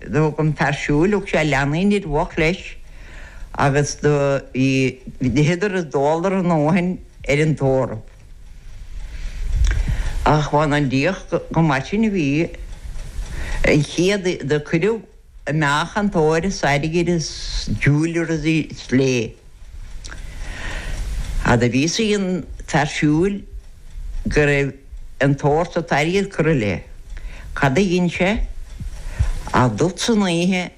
Do thug an fear siúil, thug sé leanaí an fhir bhoicht leis agus do d'itheadar is d'óladar a ndóthain ar an tórramh. Ach amháin an diach go mar sin a bhí, an chéad do cuireadh amach an t-ór is airgead is jewellery is léi. Fhad a bhí a fhios ag an bhfear siúil go raibh an t-ór is an t-airgead curtha léi. Cad a dhein sé ach teacht san oíche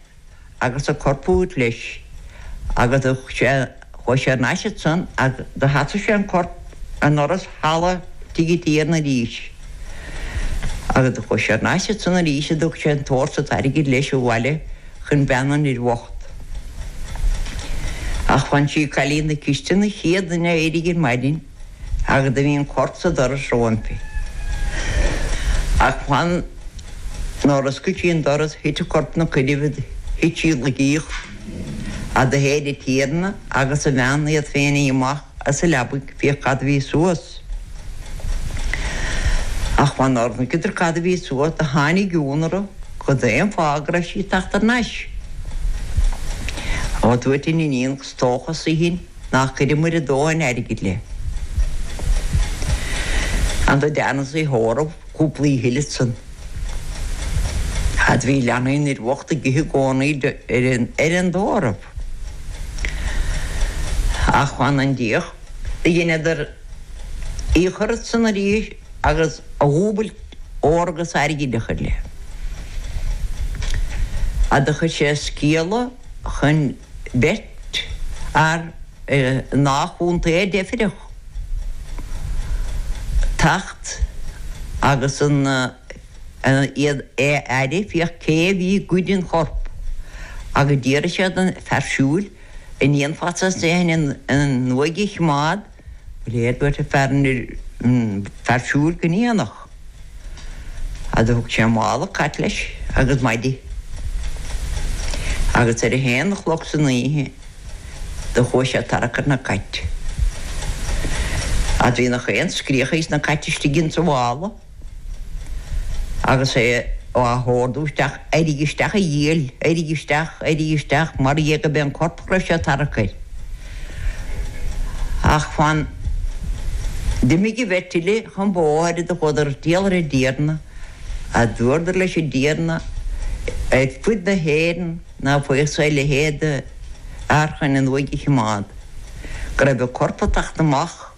agus an corp a thabhairt leis agus chuaigh sé thar n-ais ansan agus do sheasaigh sé an corp i ndoras halla tigh an Tiarna arís. Agus do chuaigh sé thar n-ais ansan arís agus do thug sé an t-ór is an t-airgead leis abhaile. chun bean an fhir bhocht. Ach amháin sí cailín na cistine an chéad duine a éirigh ar maidin agus do bhí an corp sa doras roimpi. Ach amháin nuair a oscail sí an doras thit an corp ina coinnibh is thit sí i laigíocht is do théid an Tiarna agus a bhean iad féin amach as a leabaidh féach cad a bhí suas. Ach amháin nuair a chonaiceadar cad a bhí suas do tháinig ionadh orthu cad é an fáth go raibh sí ag teacht thar n-ais. Ó, dúirt an iníon is dócha sé sin nár chuireamair a dóthain airgid léi. An do deineadh í a thórramh cúpla oíche eile ansan. Fhad a bhí leanaí an fhir bhocht ag ithe i gcónaí ar an dtórramh. Ach amháin an díogha a dheineadar í a chur ansan arís agus a dhúbailt ór agus airgead a chur léi. Ach do chuir sé sciala chun beirt fhear i ndá chontae a deifreadh, teacht agus an. An uaigh a fhaire féach cé a bhí ag goid an choirp, agus d'fhiafraigh sé den fhear siúil, an ndéanfadh sé sin an uaigh a chimeád, go léir dúirt an fear siúil go ndéanfadh. Agus thug sé mála cait leis agus maide. Agus ar a haon a chlog san oíche do chuaigh sé ag tarrac ar na cait. Agus bhí na haon scréach ages na cait istigh insa mhála. Agus é á hordú isteach, Eirigh isteach, a dhiabhail! Eirigh isteach! Eirigh isteach! Mar dhea go mbeadh an corp chroise ag tarrac air. Ach fan. D'imigh an bheirt eile chun bóthair do chuadar ag triall ar an dTiarna, is dúradar leis an dTiarna, ar fud na hÉireann ná faigheadh sé a leithéid d'fhear chun an uaigh a chimeád, go raibh an corp ag teacht amach.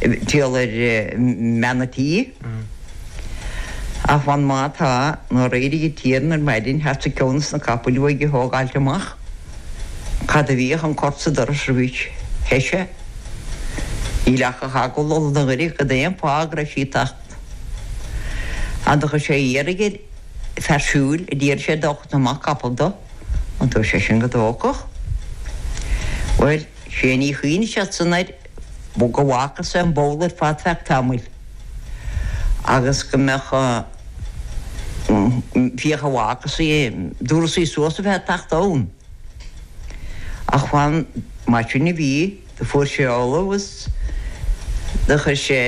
Triall ar mbean a' tí. Ach amháin má tá, nuair éirigh an Tiarna ar maidin thart sa chionn is na capaill a bhí aige a thógáilt amach, cad a bhí ach an corp sa doras roimhis. Thoisigh Níl ach a thagall ó na ghoirid cad é an fáth go raibh sí ag teacht ann. Do chuir sé iarraidh ar fear siúil a d'iarr sé dó chun amach capall dó, dúirt sé sin go dtógfadh. Bhuel. Sé an ní a chinn sé sin air go bhfágfadh sé an baile ar fad feadh tamaill agus go mbeadh féachaint an bhfágfadh sí, an dtabharfadh sí suas a bheith ag teacht ann. Ach amháin mar sin a bhí, do fuair sé ollamh agus do chuir sé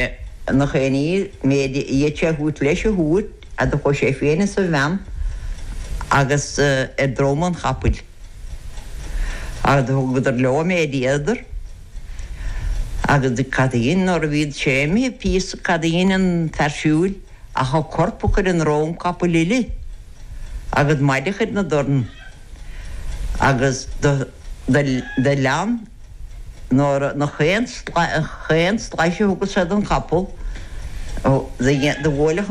ina choinní an méid a fhéad sé a thabhairt leis a thabhairt agus do chuaigh sé féin is a bhean agus ar drom an chapaill. Cad a thugadar leo a mbéiríodar? Agus cad a dhein nuair a bhí siad imithe píosa cad a dhein an fear siúil ach an corp a chur ar dhrom capaill eile agus maide a chur ina dorn agus do lean nuair na chaon slais a thugadh sé don chapall do bhuaileadh